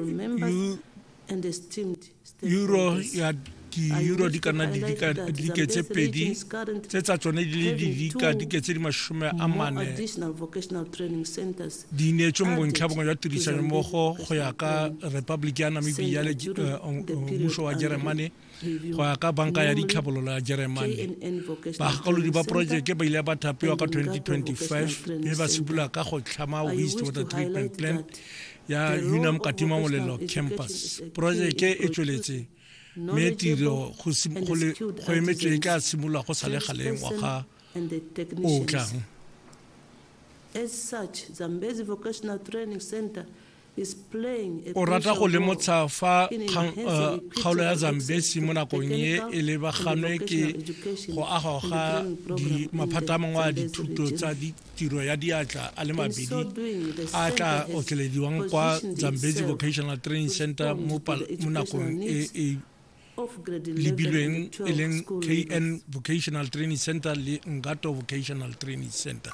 members and esteemed euro stakeholders. ya di-euro di ka nna didika dike tse pedi tse tsa tsone di le didika dike tse di masome a More mane additional vocational training centers di neetswe mo bontlhabongwe jwa tirisano mmogo go ya ka republic ya namibia le eh, mmuso wa jeremane go ya ka banka ya ditlhabololo ya jeremane bagakolodi ba porojeke ba ile ba thapiwa ka 2025 mme ba simolola ka go tlhama waste water treatment plant ya unam katima molelo campus porojeke e tsweletse mme tiro go emetswe e tla simolola go sa le galeng wa ga o tlang As such, Zambezi Vocational Training Center O rata go lemotsha fa kgaolo ya Zambesi mo nakong e e lebaganwe ke go agwa ga maphata a mangwe a dithuto tsa tiro ya diatla a le mabedi a tla otlelediwang kwa Zambesi Vocational Training Center mo nakong e e lebilweng e leng kn vocational training center le ngato vocational training center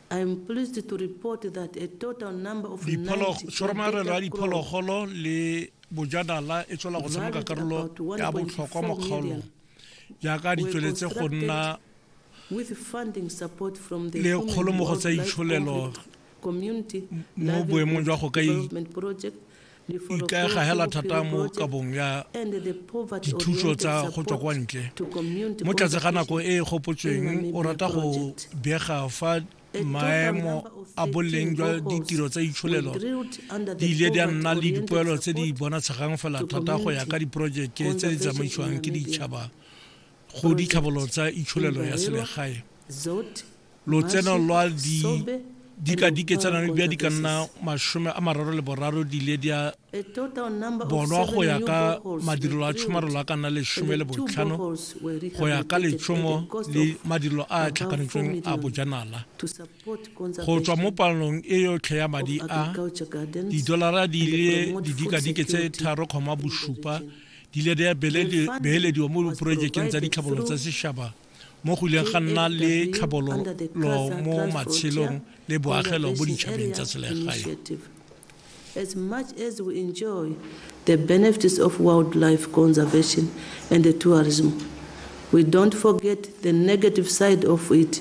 Tshwaromagelo ya Diphologolo le Bojanala e tswela go tshameka karolo ya botlhokwa mo kgaolong jaaka di tsweletse go nna le kgolomogo tsa itsholelo mo boemong jwa go ka ikaega hela thata mo kabong ya dithuso tsa go tswa kwa ntle mo tlatse ga nako e e gopotsweng o rata go bega fa maemo a boleng jwa ditiro tsa itsholelo di ile di a nna le dipoelo tse di bonatshegang fela thata go ya ka diporojeke tse di tsamaisiwang ke ditšhaba go ditlhabololo tsa itsholelo ya selegae lotseno lwa di dikadike tsa nano bja di ka nna masome a mararo le boraro di ile di a bonwa go ya ka madirelo a tshomarelo a ka nna lesome le botlhano go ya ka letshomo le madirelo a a tlhakanetsweng a bojanala go tswa mo palong e yotlhe ya madi a didolara di ile didikadike tse tharo kgoma bosupa di ile di a beelediwa mo diporojekeng tsa ditlhabololo tsa sešaba mo go ileng ga nna le tlhabololo mo matshelong le boagelo mo ditšhabeng tsa selegae As much as we enjoy the benefits of wildlife conservation and the tourism, we don't forget the negative side of it,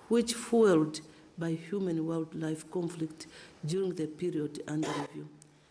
which fueled by human-wildlife conflict during the period under review.